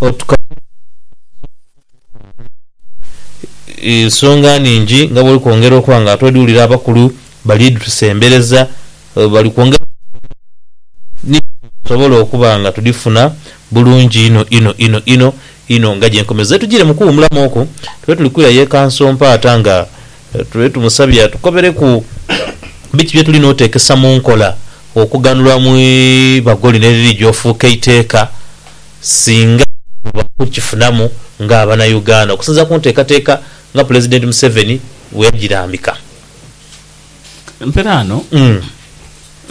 Otuka mu bwire obw'omusanhizaamu olw'okuba nga ensonga nhingi nga bw'oli kwongera okuba nga ate odi wulira abakulu bali ditusembereza, bali kwongera okutukomerera ku ngeri ki gyetusobola okuba nga tudhifuna bulungi inho inho inho inho inho nga gye nkomereze. Ze tujiire mu kuwumulamu okwo, tube tuli kwirayo e Kansompaata nga tube tumusabye atukobereku biki bye tulina oteekesa mu nkola okughanhulwa mu ibago lino eriri gya ofuuka eiteeka. singa bwebaba kukifunamu nga abana Uganda okusinzira kuntekateka nga Pulezidenti Museveni bweyajirambika. Empera ano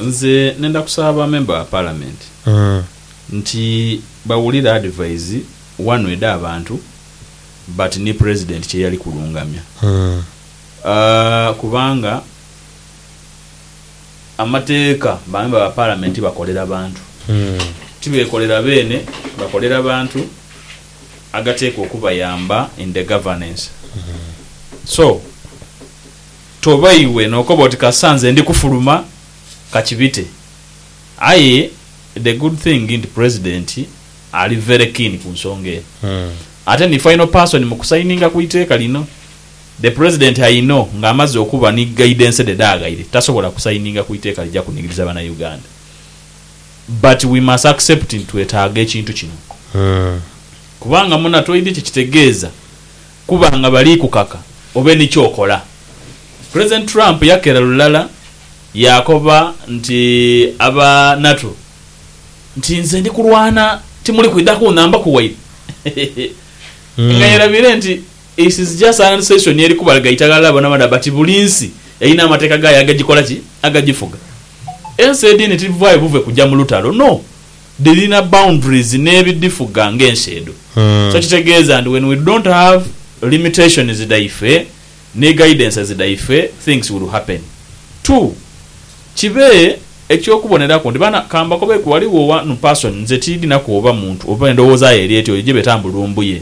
nze nenda kusaba ba member ba parliament nti bawulire advise wanu eda abantu but ni Pulezidenti kyeyali kulungamya kubanga. Amateeka bamemba ba Palamenti bakolera bantu. Tibeekolera beene, bakolera bantu agateekwa okubayamba in the governance. So, toba iwe n'okoba oti kasita nze ndi kufuluma, ka kibite. Aye the good thing nti President ali very keen ku nsonga eno. Ate ni final person mu kusaininga ku iteeka lino. The President I know nga amaze okuba ni guidance dhe dhaaghaire tasobola ku signinga ku iteeka lija kunigiriza bana Uganda but we must accept nti twetaaga ekintu kino kubanga muna toidhi kyekitegeeza kuba nga bali kukaka obe ni kyokola. President Trump yakera lulala yaakoba nti aba NATO nti nze ndi kulwana timuli kwidha kunhambaku waire nga yerabire nti This is just an session eri kubalaga eitagha lya bona bona but buli nsi erina amateeka gaayo agagikola ki? Agagifuga. Ensi edindi tidhivaayo buve kuja mu lutalo no! Dhirina boundaries n'ebidhifuga ng'ensi edho. So kitegeeza nti when we don't have limitations dhaife ni guidances dhaife things will happen. Two, kibe eky'okuboneraku nti bana ka mbakobeku ghaligho one person nze tiidhinaku oba muntu oba endhowooza ye eri etya oyo gyebeta mbu lumbuye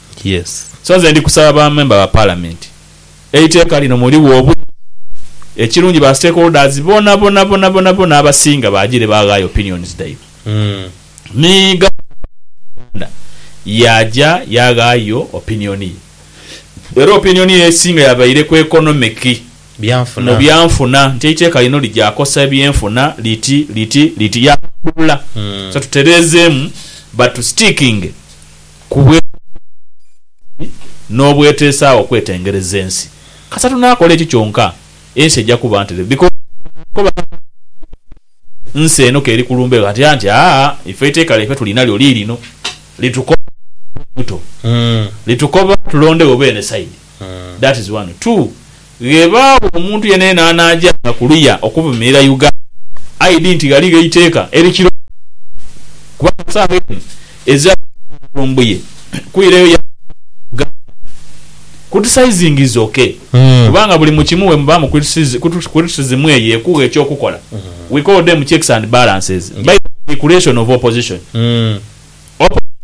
Yes. So nze ndi kusaba ba member ba parliament eiteka lino muligho obulungi ekirungi ba stakeholders bonabonabonabonabona abasinga bajire baghayo opinions dhaibwe ni governor wa Uganda yaja yaghayo opinion ye era opinion ye esinga yabaire ku economic mu byanfuna nti eiteka lino lija kosa ebyenfuna liti liti liti yalambulula so tuterezemu but tu stickinge ku bw'eteesaagho bw'ensi n'obweteesaagho okwetengereza ensi. Kasita tunaakola ekyo kyonka, ensi eja kuba ntereevu. Bikoolo bikoba gha buli kiro, nsi eno k'eri ku lumbe ghatya nti, Aa, ife eiteeka lyaife tuli nalyo liirino. Litukoba okuba buto. Litukoba tulondewo beene sayidi. That is one. Two, Ghebagho omuntu yenayena anajanga kuluya okuvumirira Uganda, aidhi nti ghaligho eiteeka erikiroga kubanga sawa eno ezira kuvunaana Lumbuye kwirayo yaja mu Uganda kutisizing is ok kubanga buli mukimu wemuba mu criticism eyo ekugha ekyokukola we call them checks and balances by the manipulation of opposition.